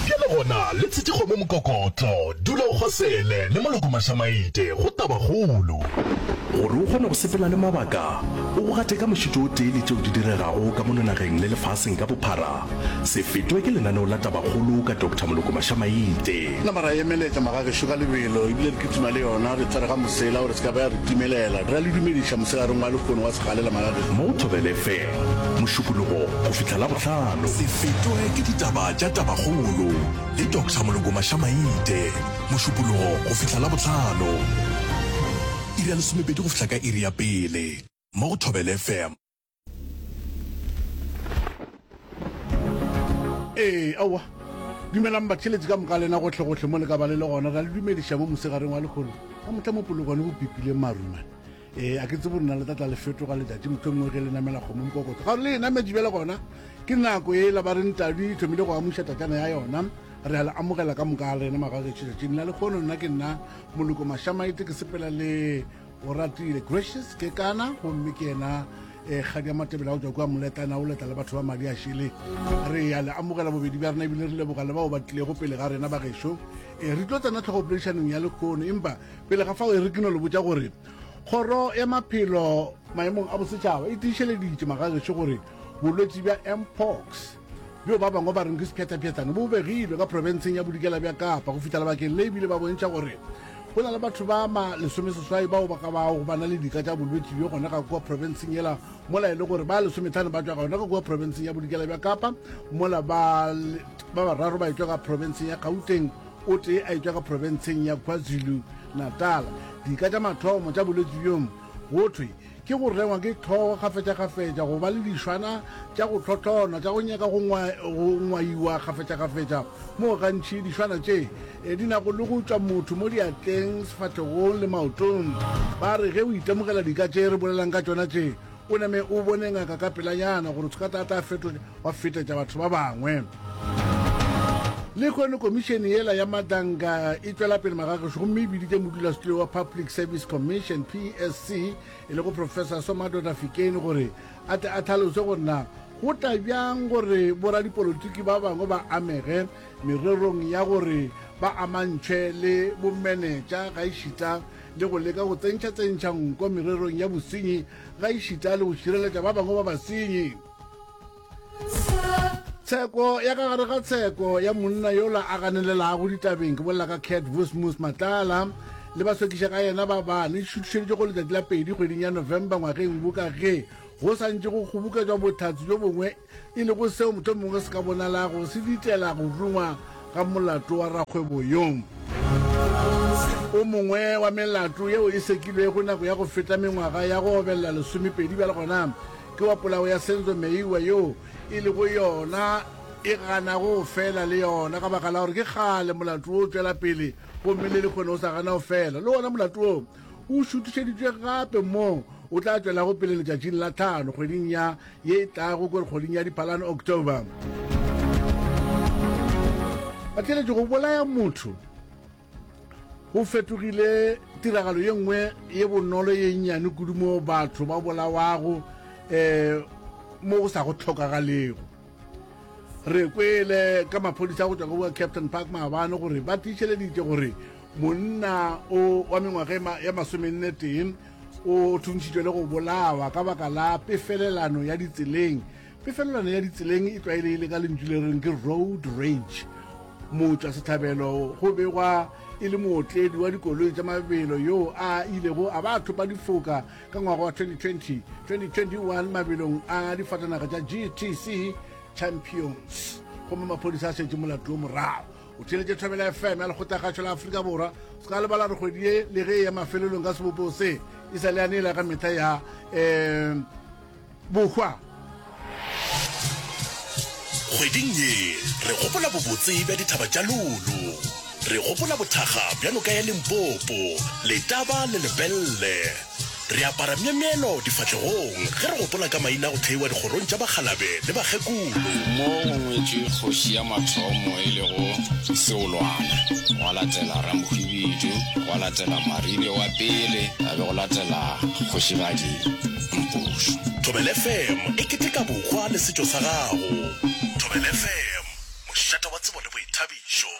Bjale gona, le tshetše kgomo mokokotlo, dula o kgosele, le moloko mašamaite, go tabakgolo. Gore o kgone go sepela le mabaka, o go gate ka mošito o tee le tšeo di diregago ka mono nageng le lefaseng ka bophara, se fetwe ke lenaneo la tabakgolo ka Doctor Moloko Mašamaite. Nama ra e emeletša magagešo ka lebelo, ebile re kitima le yona, re tsere ga mosela gore se ka ba ya re timelela. Ra le dumediša moselareng wa lehono wa segalela magagešo. Mo Thobela FM. Mošupologo go fihla Labohlano. Se fetoge ke ditaba tša Tabakgolo le Doctor Moloko Mašamaite, Mošupologo go fihla Labohlano, iri ya lesomepedi go fihla ka iri ya pele, mo go Thobela FM. Ee, aowa. Dumelang batheeletsi ka moka lena gohle-gohle mo le ka ba le le gona. Ra le dumediša mo mosegareng wa lekgolo ka mohla mo Polokwane go pipileng marumane. ee a ke tse borena le tlatla le fetoga letšatši motho nngwe ge le namela kgomo mokokotlo ga le e nametše bjale gona ke nako e la ba re ntadu e thomile go amuša tatšana ya yona re a le amogela ka moka a rena magagetšo tšatšing la lekgono nna ke nna moloko mashamaite ke sepela le o ratile gracious ke kana gomme ke yena um eh, kgadi ya matebele a go tswa kua moletana o letla le batho ba madi a šele re ya le amogela bobedi bja rena ebile re leboga le bao ba tlilego pele ga rena bagešo um re tlo tsena tlhogo poledišanong ya lekgono empa Pele ga fao, e re ke no le botša gore Kgoro ya Maphelo Maemong a Bosetšhaba e tiišeleditše magagešo gore bolwetši bja Mpox, bjo ba bangwe ba reng ke sephethaphethane, bo begilwe ka profenseng ya Bodikela bja Kapa go fihla lebakeng le ebile ba bontšha gore go na le batho ba ma lesomeseswai bao ba ka bago ba na le dika tša bolwetši bjo gona ka kua profenseng yela mola e le gore ba lesomethane ba tšwa gona ka kua profenseng ya Bodikela bja Kapa mola ba bararo ba etšwa ka profenseng ya Gauteng o tee a e tšwa ka profenseng ya Kwazulu Natal. Dika tša mathomo tša bolwetši bjo go thwe ke go rengwa ke hlogo kgafetšakgafetša, go ba le dišwana tša go hlohlonwa tša go nyaka go ngwaiwa kgafetšakgafetša moo gantši dišwana tše e di nago le go tšwa motho mo diatleng, sefahlegong le maotong. Ba re ge o itemogela dika tše re bolelang ka tšona tše, O name o bone ngaka ka pelanyana gore tshukata a tla fetonya wa fetetša batho ba bangwe. Lehono komišene yela ya Madanga e tšwela pele magagešo gomme e biditše modulasetulo wa Public Service Commission, PSC, e lego Professor Somadoda Fikeni gore a tle a tlhalose gore na go tla bjang gore boradipolotiki ba bangwe ba amege mererong ya gore ba amantšhwe le bomenetša gaešita le go leka go tsentšha-tsentšha nko mererong ya bosenyi gaešita le go šireletša ba bangwe ba basenyi. Tsheko ya ka gare ga tsheko ya monna yola a ganelelago ditabeng ke bolela ka Cat Vusmus Matlala le ba sekiša ka yena ba ba ne šuthišeditše go letšatši la pedi kgweding ya November ngwageng wo ka ge go santše go kgoboketšwa bothhatsi jo bongwe e lego seo mohlomongwe se ka bonalago se ditela go rungwa ga molato wa rakgwebo yo. O mongwe wa melato yeo e sekilwego nako ya go feta mengwaga ya go obelela lesomepedi bjale gona ke wa polao ya Senzo Meyiwa yo e lego yona e ganago go fela le yona ka baka la gore ke kgale molato wo o tšwela pele gomme le lekgone o sa gana go fela le wona molato wo o šuthišeditšwe gape moo o tla tšwelago pele letšatšing la tlhano kgweding ya ye e tlago kore kgweding ya diphalane october ba tleletše go bolaya motho go fetogile tiragalo ye nngwe ye bonolo ye nnyane kudu mo batho ba bolawago um mo go sa go tlhokagalego re kwele ka maphodisa go tswa go captain park maabane gore ba tiišeleditše gore monna o wa mengwaga ya masomenne tee O thuntšhitšwe le go bolawa ka baka la pefelelano ya ditseleng. Pefelelano ya ditseleng e tlwaelegile ka lentšu le reng ke road rage. Motšwa setlhabelo go begwa e le mootledi wa dikoloi tša mabelo yoo a ilego a ba a thopa difoka ka ngwaga wa 2020 2021 mabelong a difatanaga tša GTC Champions gomme maphodisa a šetše molato wo morago. o theletše thobela fm ya lekgotlakgašo la aforika borwa se ka lebala re kgwedi ye le ge e ya mafelelong ka sebopego se e sa le yane e la ka mehla ya um bohwa kgweding ye re gopola bobotse bja dithaba tša lolo re gopola bothaga bja noka ya limpopo letaba le lebelle Re apara myemyelo difahlegong ge re gopola ka maina a go theiwa dikgorong tša bakgalabe le bakgekolo. Mo go ngwetšwe kgoši ya mathomo e lego Seolwana, gwa latela Ramokgwibidu, gwa latela Marile wa pele, ga be go latela Kgošigadi Mpošo. Thobela FM e keteka bokgwa le setšo sa gago. Thobela FM, mošate wa tsebo le boithabišo.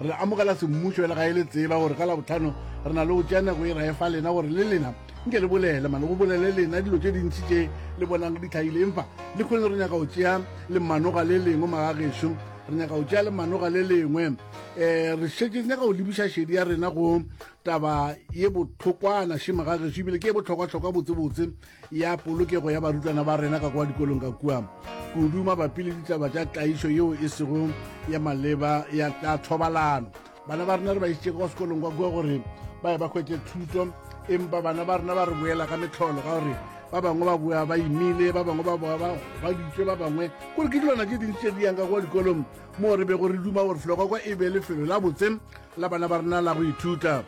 re amogela semmušo e le ga e le tseba gore ka labotlhano re na le go tšea nako e rae fa lena gore le lena nke le bolele mane go bolele lena dilo tše dintši tše le bonang di tlhaile empa le kgone re nyaka go tšea lemanoga le lengwe magagešo re nyaka go tšea lemanoga le lengwe um re šetse nyaka go lebiša šedi ya rena go taba ye botlhokwana šemagagešo ebile ke e botlhokwatlhokwa botsebotse ya polokego ya barutwana ba rena ka kwa dikolong ka kua kudu mabapi le ditaba tša tlaišo yeo e sego ya maleba ya tša thobalano bana ba rena re ba isitše kwa sekolong kwa kua gore ba ye ba hwetse thuto empa bana ba rena ba re boela ka metlholo ka gore ba bangwe ba boa ba imile ba bangwe ba boa ba gobaditswe ba bangwe kore ke dilwana tse dintsi tse di yang ka kwa dikolong moo re bego re duma gore felo kwa kwa e be lefelo la botse la bana ba rena la go ithuta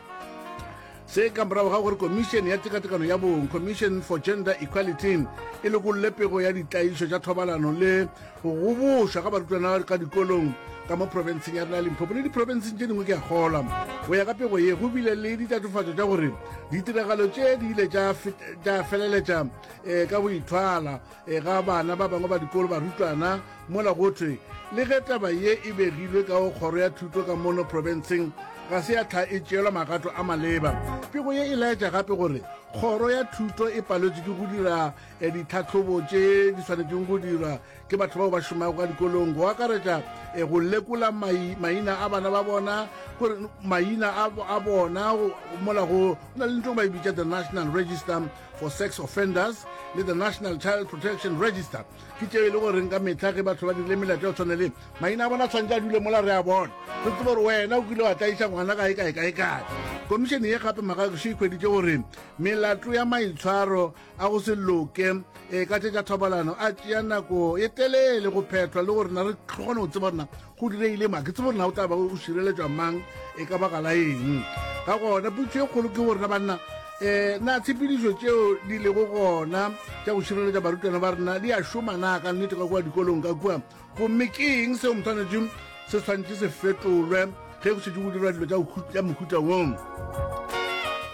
Se ka morago ga gore Komišene ya Tekatekano ya Bong, Commission for Gender Equality, e lokolle pego ya ditlaišo tša thobalano le go gobošwa ga barutwana ka dikolong ka mo profenseng ya rena Limpopo le diprofenseng tše dingwe ke a kgolwa. Go ya ka pego ye, go bile le ditatofatšo tša gore ditiragalo tše di ile tša feleletša um ka go ithwala E ga bana ba bangwe ba dikolo barutwana mola go thwe le ge taba ye e begilwe ka go kgoro ya thuto ka mono profenseng ga se ya tlha e tšeelwa magato a maleba. Pego ye e laetša gape gore kgoro ya thuto e paletswe ke go dira eh, ditlhahlobo tše di swanetšeng go dirwa ke batho bao ba šomago ka dikolong go akaretša eh, go lekola maina a bana ba bona gore maina a bona mola go na le ntho ba e bitša the national register for Sex Offenders le the National Child Protection Register ke tšeo e le goreng ka mehla ge batho ba dirile melato ya go tshwane le maina a bona tshwantse a dule mola re a bona re tsebe gore wena o kile wa tlaiša ngwana kae kae kae kae komišene ye gape magagišo e hweditše gore melato ya maitshwaro a go se loke e ka tše tša thobalano a tšea nako e telele go phethwa le gore na re kgone go tseba gorena Go direile mang? Ke tsebe gore na o tla ba o šireletšwa mang e ka baka la eng? Ka gona putso e kgolo ke gorena banna um na tshepedišo tšeo di lego gona tša go šireletša barutwana ba rena di a šoma na ka nnete ka kua dikolong ka kua gomme ke eng seo motshwanetšeng se tshwanetse se fetolwe ge go šetše go dirwa dilo tša mohuta wong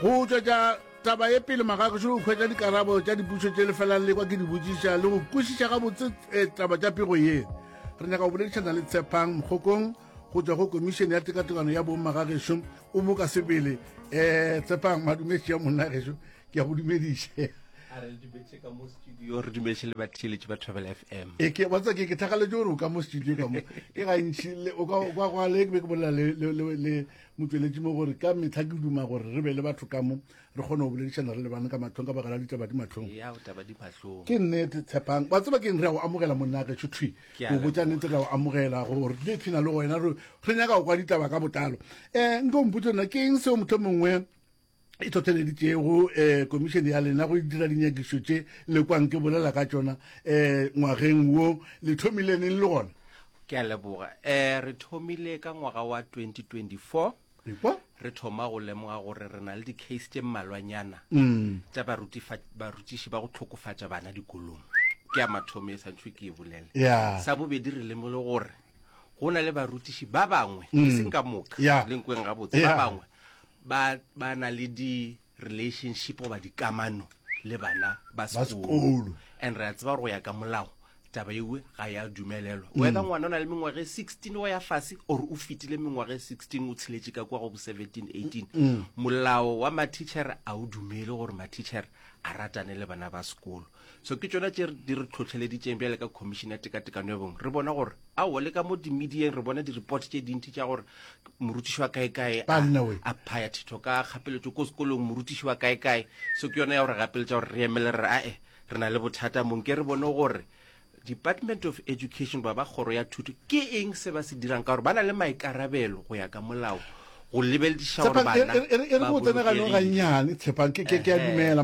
go tšwetša Taba ye pele magagešu go hwetša dikarabo tša dipušo tše lefelang le kwa ke di botšiša le go kwešiša gabotse eh, taba tša pego ye. Re nyaka go boledišana le Tshepang Mokgokong go tšwa go komišene ya tekatekano ya bong magagešu o mo ka sebele. Eh, Tshepang madumetše ya monna gešu ke ya go dumediše. a re dumetse ka mo studio re dumetse le batheeletši ba travel f m e ke batsa ke ke thagaletše gore o ka mo studio ka mo ke gantši o ka kwa le ke be ke bolela le Mo tšweletše mo gore, Ka mehla ke duma gore re be le batho ka mo re kgone go boledišana re lebane ka mahlong ka baka la ditaba di mahlong. Eya, go taba di mahlong. Ke nnete, Tshepang. Wa tseba keng, re a go amogela monna ge tšho thwi. Ke a Go botša leboga. nnete, re a go amogela go re tle thina le wena, re, re nyaka go kwa ditaba ka botlalo. Eh, nke o mpotše nna, ke eng seo mohlomongwe e tlhotheleditšego um eh, komišene ya lena go dira dinyakišo tše le kwang ke bolela ka tšona um ngwageng wo le thomile neng le gona ke a leboga um re thomile ka ngwaga wa 2024 ekwa re thoma go lemoga gore re na le di-case tše mmalwanyana mm. tša barutiši ba go tlhokofatša bana dikolong ke ya mathomo e santšhwe ke e bolele sa bobedi re lemole gore go na le barutiši ba bangwe e mm. seng ka moka lenkweng gabotse ba bangwe ba ba na le di relationship goba dikamano le bana ba Ba sekolo sekolo. and re a tseba gore go ya ka molao taba ewe ga ya dumelelwa Mm. wether ngwana o na le mengwaga e 16 wa ya fase or o fetile mengwaga e 16 o tsheletše ka kwa go bo 17 18 Mm. molao wa matitšhere a o dumele gore matitšhere a ratane le bana ba sekolo so ke tsona tse di re tlhotlheleditseng bjale ka commission ya tekatekano ya bong re bona gore ao le ka mo dimedieng re bona di-report tse dintsi tša gore morutiši wa kaekae a phaya thetho ka kgapeletso ko sekolong morutiši wa kaekae so ke yona ya gore gapeletsa gore re emele re ae re na le bothata mong ke re bone gore department of education ba ba kgoro ya thuto ke eng se ba se dirang ka gore ba na le maikarabelo go ya ka molao go lebelediša gore bana e re botseneganong gannyane tshepang ke a dumela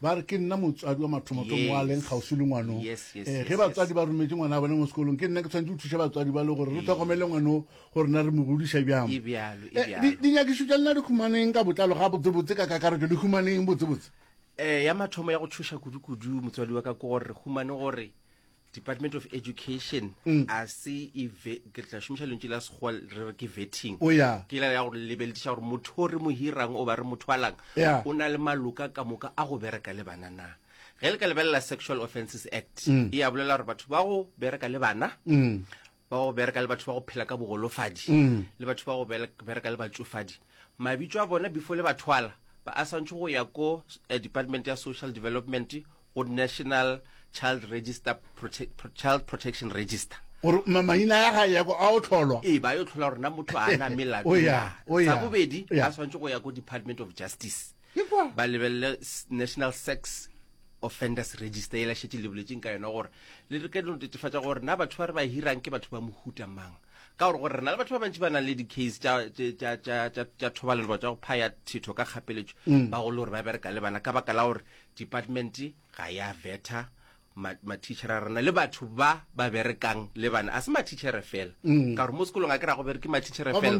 Ba re, Ke nna motswadi wa mathomothomo wa leng kgauswi le ngwano. Ee, ge batswadi ba rometše ngwana a bone mo sekolong, ke nna ke tshwanetse go thuša batswadi ba le gore re tlhokomele ngwano gore na re mo godiša bjang. Eh, dinyakišo tša lena di humaneng ka botlalo ga botsebotse ka kakaretšo le humaneng botsebotse? Eh, ya mathomo ya go tšhoša kudukudu motswadi wa ka ke gore re humane gore department of education mm. a se ke tla šomiša lentši la sekgowa re re ke vetting oh, ke la ya go lebelediša gore motho o re mo hirang o ba re motho alang o na le maloka ka moka a go bereka le bana na ge le ka lebelela sexual offences act mm. e ya bolela gore batho ba go bereka le bana mm. ba go bereka le batho ba go phela ka bogolofadi mm. le batho ba go bereka le batsofadi mabitso a bona before le bathwala ba a swantšhe go ya ko eh, department ya social development go national child register prote child protection register gore maina ya ga yako a o tlholwa ee ba yo tlhola gorena motho a na melato sa bobedi a swantse go ya ko department of justice ba lebelele national sex offenders register e lašetse le boletseng ka yona gore le re ka dino tetefatsa gore na batho ba re ba hirang ke batho ba mohuta mang ka gore gore re na le batho ba bantši ba nang le di-case tša thobalelo ba tswa go phaya thetho ka kgapeletšo mm. ba go le gore ba bereka le bana ka baka la gore department ga ya vetha ma matitšhere a rena le batho ba ba berekang le bana a se matitšhere fela mm. ka gore mo sekolong a ke ra go bereke matitšhere fela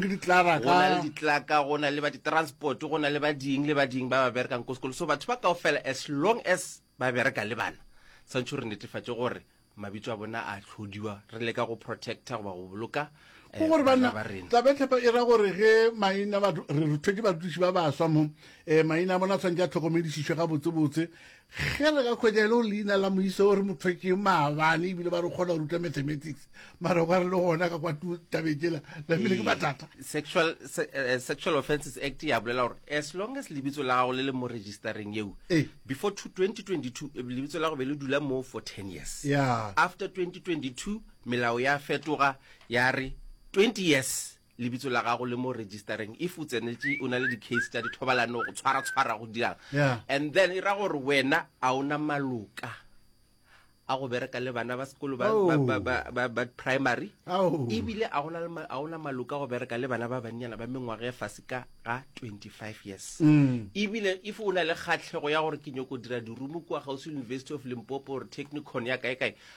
go na le ditlaka go na le ba ditransport go na le ba ding le ba ding ba ba berekang ko sekolo so batho ba kao fela as long as ba bereka le bana tshwanetse re netefatse gore mabitso a bona a tlhodiwa re leka go protecta goba go boloka eh, gore bana tabetlhepa e ra gore ge maina re ruthe ke badutiši ba baswa mo um maina a bona tshwanetse a tlhokomedišišwe ga botsebotse Ge re ka hwetša e le gore leina la moisa o re mo thwetše maabane ebile ba re o kgona go ruta mathematics mara ba re le gona ka kwa tu- tabeng tsela la pele ke mathata Ee, sexual se- eh, sexual offences act ya bolela gore as long as lebitso la gago le le mo registereng yeo Ee. before two- 2022 eh, lebitso la go be le dula moo for 10 years Yeah. after 2022 melao ya fetoga ya re 20 years lebitso la gago le mo registereng if o tsenetše o na le di-case tša dithobalano go tshwaratshwara go dirang Yeah. and then e ra gore wena a ona maloka a go bereka le bana ba sekolo ba, Oh. ba, ba, ba, ba, ba primary Ao. ebile a gona le ma- a ona maloka a go bereka le bana ba bannyana ba mengwaga e fase ka ga 25 years Mm. ebile if o na le kgatlhego ya gore ke nyoko dira dirumo kua gausi university of limpopo or technicon ya kae kae